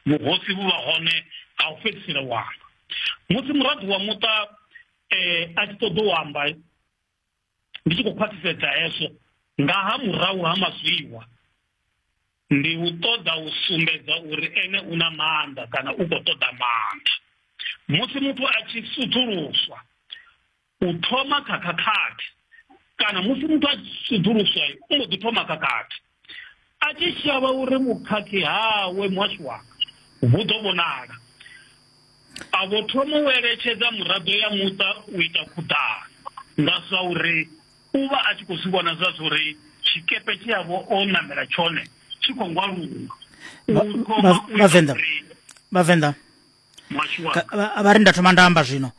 vhuhosi vhu vha hone ha u fhedzisela u amba musi muraḓo wa muṱa um a tshi ṱoḓa u amba ndi tshi khou khwaṱhisedza hezwo nga ha murahu ha mazwiwa ndi u ṱoḓa u sumbedza uri ene u na maanḓa kana u khou ṱoḓa maanḓa musi muthu a tshi sudzuluswa u thoma kha khakhathi kana musi muthu a sudzuluswa u mbo ḓi thoma khakhathi a tshi shavha uri vhukhakhi hawe muhasho wanga vhu ḓo vhonala a vho thoma u eletshedza muraḓo ya muṱa u ita khuḓano nga zwa uri u vha a tshi khou zwi vhona zwa zwa uri tshikepe tshi yavho o ṋamela tshone tshi khou ngwaluwa vhavenḓa vhavenḓa vha ri nda thoma nda amba zwino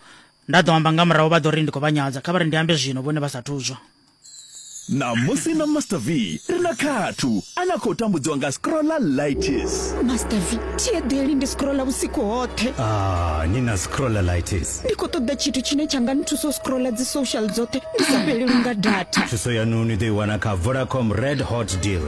nda ḓo amba nga murahu vha ḓo ri ndi khou vha nyadza kha vha ri ndi ambe zwino vhone vha sa thuzwa ṋamusi na master v ri na khathu a na khou tambudziwa nga scrolla lightis master v thi eḓeli ndi scrolla vhusiku hoṱhe ah, ni na scrolla lightis ndi khou ṱoḓa tshithu tshine tsha nga nthusa u scrolla dzi social dzoṱhe ndi sa fhelelwi nga data thuso yanu ni ḓo i wana kha vodacom red hot deal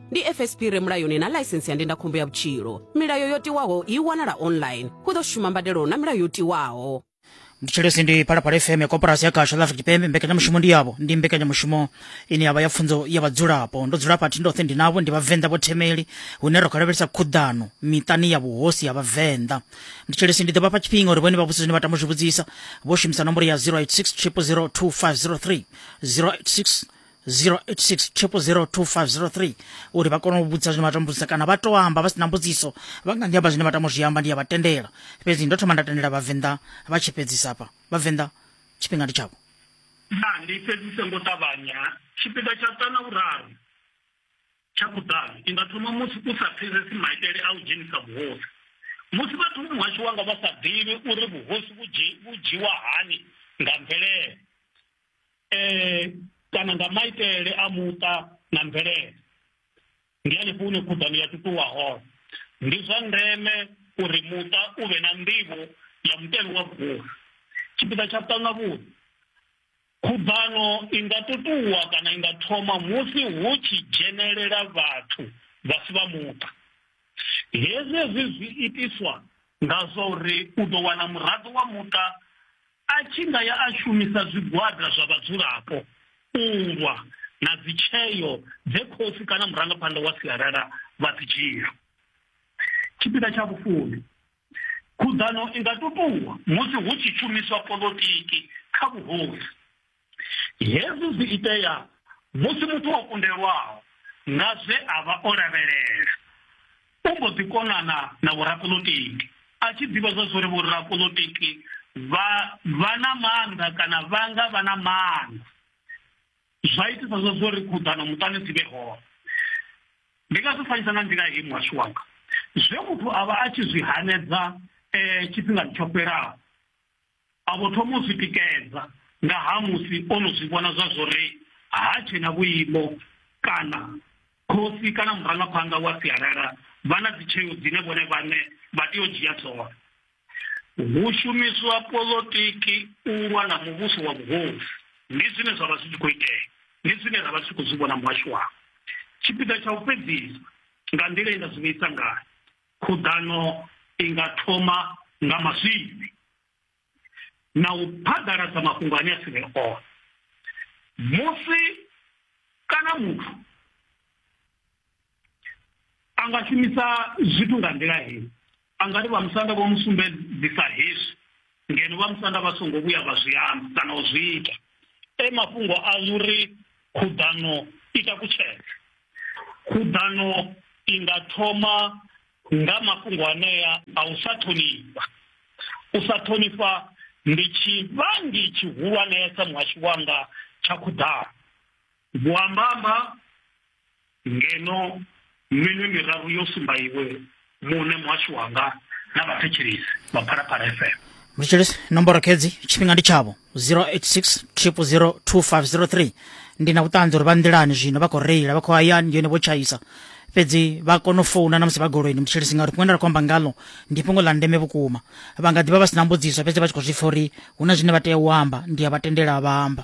ndi fsp re mulayoni na ḽaisentsi ya ndindakhombo ya vhutshilo milayo yo tiwaho i wanala online hu ḓo shuma mbadelo na milayo yo tiwaho ndi tshelesi ndi phalaphala fm ya koporasi ya kasha ḽa afrika tshipembe mbekanyamushumo ndi yavho ndi mbekanyamushumo ine yavha ya pfunzo ya vhadzulapo ndo dzula pathi ndoṱhe ndi navho ndi vhavenḓa vho themeli hune ro khalavhelisa khuḓano miṱani ya vhuhosi ya vhavenḓa ndi tshelesi ndi ḓo vhafha tshifhinga uri vhone vha vhudzise zwine vha tama u zwi vhudzisa vho shumisa nomboro ya 086 0002503 086 086 uri vha kone u vhudza zwine vha tambudza kana vha to amba vha si na mbudziso vha nga ndi amba zwine vha tamo zwi amba ndi ya vha tendela fhedzi ndo thoma nda tendela vhavenḓa vha tshi fhedzisa hafha vhavenḓa tshifhinga ndi tshavho na ndi fhedzise ngo ṱavhanya tshipiḓa tsha ṱana vhuraru tsha kuḓalo ndi nga thoma musi u sa pfesesi maitele a u dzhenisa vhuhosi musi vhathu muhasho wanga vha sa ḓivhi uri vhuhosi vhu dzhiwa hani nga mvelele eh, kana nga maitele a muṱa na mvelele ndi hanefho hune khuḓano ya tutuwa hone ndi zwa ndeme uri muṱa u vhe na nḓivho ya mutevhe wa vhukuma tshipiḓa tsha vhuṱanga vhuḓi khuḓano i nga tutuwa kana i nga thoma musi hu tshi dzhenelela vhathu vha si vha muṱa hezwi hezwi zwi itiswa nga zwa uri u ḓo wana muraḓo wa muṱa A tshi nga ya a shumisa zwigwada zwa vhadzulapo u lwa na dzitsheo dze khosi kana murangaphanḓa wa sialala vha dzi dzhia. Tshipiḓa tsha vhufumi. Khuḓano i nga tutuwa musi hu tshi shumiswa poḽotiki kha vhuhosi. Hezwi zwi itea musi muthu o kundelwaho nga zwe a vha o lavhelela u mbo ḓi konana na vhorapolitiki a tshi ḓivha zwa zwa uri vhorapolitiki vha vha na maanḓa kana vha nga vha na maanḓa zwa itisa zwa zwa uri khuḓano muṱani dzi vhe hone ndi nga zwi fanyisa nga nḓila hei muhashu wanga zwe muthu a vha a tshi zwi hanedza um tshifhingani tsho fhelaho A vho thoma u zwi tikedza nga ha musi o no zwi vhona zwa zwori ha tshe na vhuimo kana khosi kana murangaphanḓa wa sialala vha na dzitsheo dzine vhone vhaṋe vha tea u dzhia dzone. Hu shumiswa polotiki u lwa na muvhuso wa vhuhosi. Ndi zwine zwa vha zwi tshi khou itea, ndi zwine ra vha ri tshi khou zwi vhona muhasho wanga. Tshipiḓa tsha u fhedzisa nga nḓila ye nda zwi vhuisa ngayo, Khuḓano i nga thoma nga mazwifhi na u phaḓaladza mafhungo ane a si vhe one. Musi kana muthu a nga shumisa zwithu nga nḓila heyi, a nga ri vhamusanda vho mu sumbedzisa hezwi ngeno vha musanda vha songo vhuya vha zwi amba kana u zwi ita e mafhungo a uri khuḓano i takutshedza khuḓano i nga thoma nga mafhungo anea a u sa ṱhonifha u sa ṱhonifha ndi tshivhangi tshihulwanesa muhashu wanga tsha khuḓano Vho amba-amba ngeno minwe miraru yo sumba iwe muṋe muhashu wanga na vhathetshelesi vha phalaphala fm mthetshelesi nomboro khedzi tshifhinga ndi tshavho 086 2503 ndi na vhuṱanzi uri vha nḓilani zwino vha khou reila vha khou hayani ndi yone vho tshaisa fhedzi vha kona u founa na musi vha goloini mthetshelesi ngauri fhungo nda ri khou amba ngalo ndi fhungo ḽa ndeme vhukuma vha nga ḓivha vha si na mbudziso fhedzi vha tshi khou zwi pfa uri hu na zwine vha tea u amba ndi a vha tendela vha amba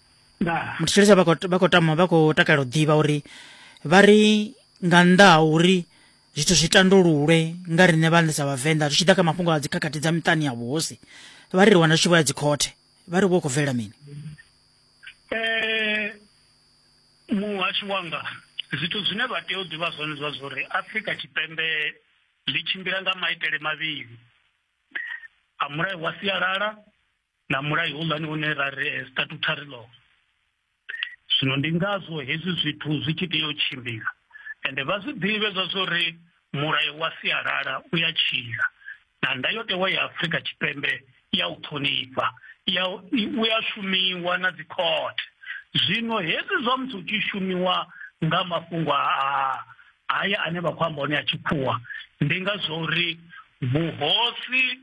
ndi tshi litsha vha khou tama vha khou takalela u ḓivha uri vha ri nga nnḓa ha uri zwithu zwi tandululwe nga riṋe vhaṋe sa vhavenḓa zwi tshi ḓa kha mafhungo a dzikhakhathi dza miṱani ya vhuhosi vha ri ri wana zwi tshi vho ya dzikhothe vha ri vho khou bvelela mini eh, muhasho wanga zwithu zwine vha tea u ḓivha zwone zwa zwo uri afrika tshipembe ḽi tshimbila nga maitele mavhili a mulayo wa sialala na mulayo hulwane une ra ri eh, statutory law zwino ndi ngazwo hezwi zwithu zwi tshi tea u tshimbila ende vha zwi ḓivhe zwa zwo ri mulayo wa sialala u ya tshila na ndayotewa ya afurika tshipembe ya u ṱhonifha ya u ya shumiwa na dzikhothe zwino hezwi zwa musi u tshi shumiwa nga mafhungo a haya ane vha khou amba one a tshikhuwa ndi nga zwo uri vhuhosi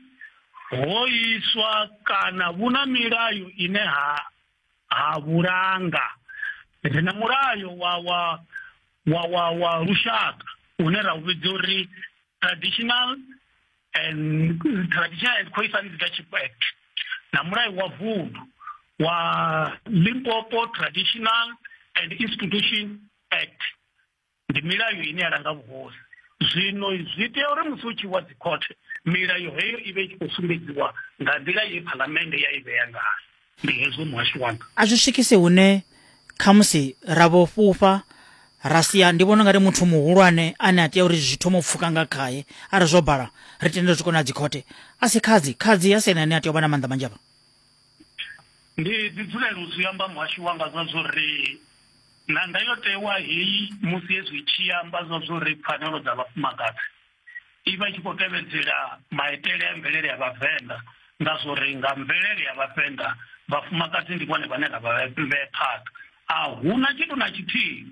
ho iswa kana vhu na milayo ine ha ha vhulanga ri na mulayo wa wa wa wa wa lushaka une ra u vhidza uri traditional and traditional and coifa leadership act na mulayo wa vundu wa limpopo traditional and institution act ndi milayo ine ya langa vhuhosi zwino zwi tea uri musi u tshi wa dzikhothe milayo heyo i vhe i tshi khou sumbedziwa nga nḓila ye phalamennde ya i vhea ngayo ndi hezwo muhasho wanga a zwi swikisi hune khamusi ra vho fhufha ra sia ndi vhona ungari muthu muhulwane ane a tea uri zwi thoma u pfuka nga khaye arali zwo bala ri tendele zwi kona dzikhothe a si khadzi khadzi a si ene ane a tea u vha na maanḓa manzhi avha Ndi ḓi dzulela u zwi amba muhashi wanga zwa zwo ri na ndayotewa heyi musi hezwi i tshi amba zwa zwo ri pfanelo dza vhafumakadzi i vha i tshi khou tevhedzela maitele a mvelele ya vhavenḓa nga zwo ri nga mvelele ya vhavenḓa vhafumakadzi ndi vhone vhane ra vha vhee phanḓa a huna tshithu na tshithihi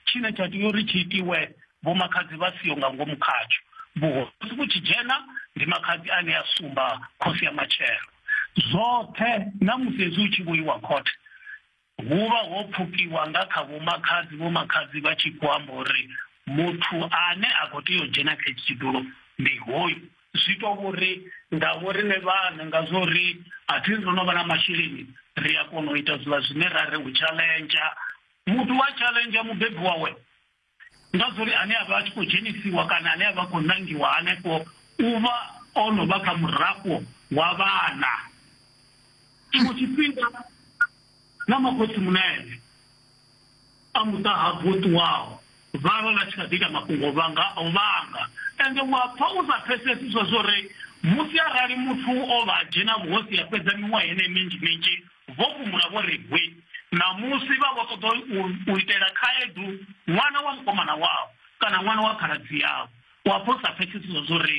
tshine tsha tea uri tshi itiwe vho makhadzi vha siho nga ngomu khatsho vhuhosi vhu tshi dzhena ndi makhadzi ane a sumba khosi ya matshelo zwoṱhe na musi hezwi u tshi vhoiwa khothe hu vha ho pfukiwa nga kha vhomakhadzi vhomakhadzi vha tshi khou amba uri muthu ane a khou tea u dzhena kha itshi tshidulo ndi hoyu zwi to vhori nga vho rine vhana nga zwo ri a thi ndo no vha na masheleni ri a kona u ita zwiḽa zwine ra ri u tshalentsha muthu wa challenge mubebi wawe nga zwo ri ane a vha a tshi khou dzhenisiwa kana ane a vha khou nangiwa hanefho u vha o no vha kha murafho wa vhana tshiṅwe tshifhinga na makhotsi munene a muṱa ha vho ṱuwaho Vha vha vha tshi kha ḓi ita mafhungo vha nga o vhanga. Ende u a pfa u sa pfesesi zwezwo ri, musi arali muthu o vha a dzhena vhuhosi a fhedza miṅwaha yeneyi minzhi minzhi, vho fhumula vho ri hwi. Ṋamusi vha vho ṱoḓa u, u itela khaedu ṅwana wa mukomana wavho, kana ṅwana wa khaladzi yavho. U a pfa u sa pfesesi zwezwo ri,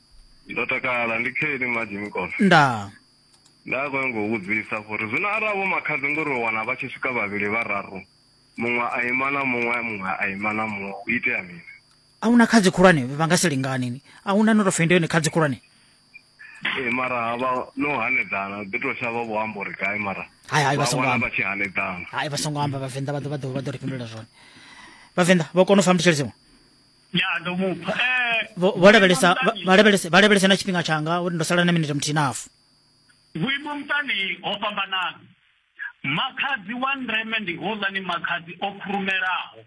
ndo takala ndi kheni maji mikolo ndaa nda kona ngo vhudzisa gore zwino arali vho makhadzi ngori u wana vha tshi swika vhavhili vhararu muṅwe a ima na muṅwe muṅwe a ima na muṅwe u itea mini a huna khadzi khulwane vha nga si lingani ni a huna no to fenda yone khadzi khulwane ee mara havha no hanedzana ḓi to shavha vho amba uri gai mara hai hai vha songo amba vha tshi hanedzana hai vha songo amba vhavenḓa vha ḓo vha ḓo vha ḓo ri fhindula zwone vhavenḓa vho kona u fa mutsheledziwa ya ndo mupha eh vho vho lavhelesa vha- vha lavhelese vha lavhelese na tshifhinga tshanga uri ndo sala na minete muthihi na hafu vhuimo muṱani ho fhambanana makhadzi wa ndeme ndi houḽani makhadzi o khurumelaho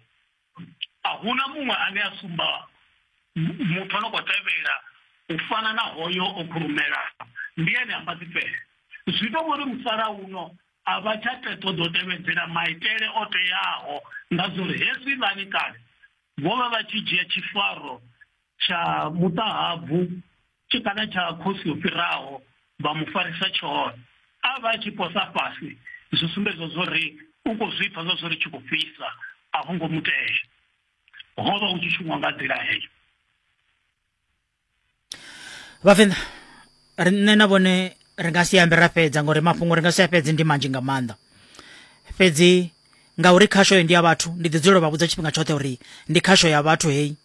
a huna muṅwe ane a sumba mu- muthu ano khou tevhela u fana na hoyo o khurumelaho ndi ene a mbaḓi fhele zwi to vhori musalauno a vha tsha te ṱoḓa u tevhedzela maitele o teaho nga zwo uri hezwi lani kale vho vha vha tshi dzhia tshifaro tsha muṱahabvu tshi kana tsha khosi o fhiraho vha mu farisa tshone a vha tshi posa fhasi zwi sumbedza zwo ri u khou zwi pfa zwa zwo ri tshi khou fhisa a vho ngo mutea ho vha hu tshi shumwa nga nḓila heyo vhavenḓa ri nṋe na vhone ri nga si ambe ra fhedza ngori mafhungo ri nga si a fhedzi ndi manzhi nga maanḓa fhedzi ngauri khasho ndi ya vhathu ndi ḓi dzulela vha vhudza tshifhinga tshoṱhe uri ndi khasho ya vhathu heyi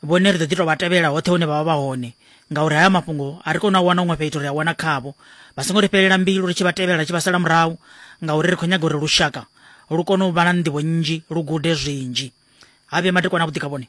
vhone ri ḓo ḓi to vha tevhela hoṱhe hune vha vha vha hone ngauri haya mafhungo a ri kona u wana huṅwe fhethu ri a wana khavho vha songo ri fhelela mbilu ri tshi vha tevhela ri tshi vha sala murahu ngauri ri khou nyaga uri lushaka lu kone u vha na nḓivho nnzhi lu gude zwinzhi ha vhuya matekwana a vhuḓi kha vhone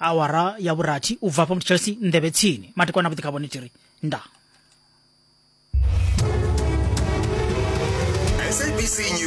awara ya vhurathi u bva hafha muthu chelsea nḓevhe tsini matikwana vhuḓi kha vhone tiri nda sabc news